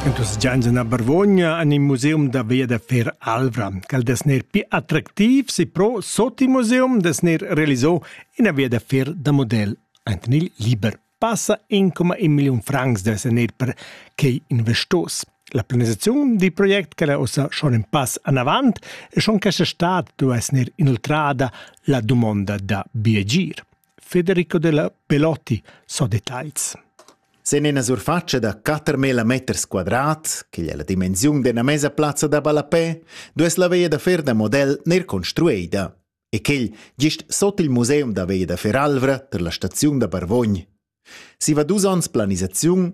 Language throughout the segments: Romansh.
En dus gians en Barvogna en il museum da via da Fer Alvra. Quel des ner pi attractiv si pro sot il museum des ner realizò ina via da fer da model. Anten il liber passa 1,1 million francs des ner per quei investos. La planisaziun di project che la ossa schon in pass anavant e schon questa stat du es ner inoltrada la dumonda da biagir. Federico della Pelotti, so details. Sen ina surfatscha da 4.000 meters quadrat, che è la dimensiun d'una mesa plazza da ballapè, dues la veia da fer da model ner construeida e quel gist sot il museum da veia da fer Alvra per la staziun da Barvogn. Si va dus onns planisaziun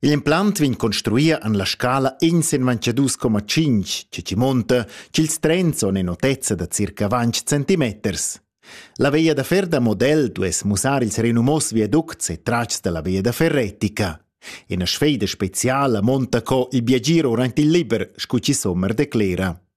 Igl implant vegn construia en la scala ensemanche dus coma tschinch, che chi monta ch'ils trens son in otezza da circa vanch centimeters. La veia da fer da model duess mussar ils renumos viaducts e tratgs da la veia da fer retica. Ina sfeida speciala monta co il biagir durant il liber, scu chi sommer declera.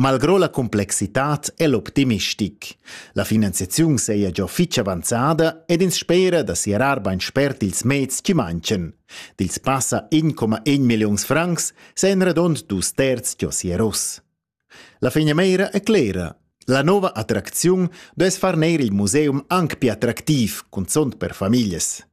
Malgrò la complexitad è l'optimistic. La finanziaziun saja già fitg avanzada ed ins spera da siarar bain spert ils meds che mancan. Dils passa 1,1 milliuns francs sajan radond dus terz già sieros. La fegnameira è clera. La nova attracziun duess far neir il museum anc più attractiv, cunzont per famiglias.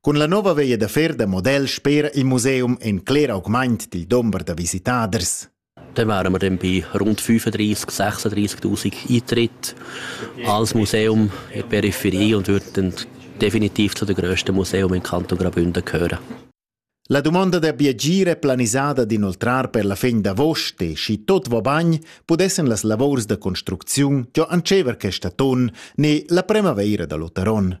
Cun la nova veia da fer da model spera il museum en cler augment dil dumber da visitaders. Dann wären wir dann bei rund 35.000, 36.000 Eintritte als Museum in der Peripherie und würden definitiv zu den grössten Museen im Kanton Graubünden gehören. La domanda da biagire planisada d'inoltrar per la fin d'avost e schi tot va bagn pudessen las lavors da construcziun giò ancever questa ton ne la primavaira da l'Otaron.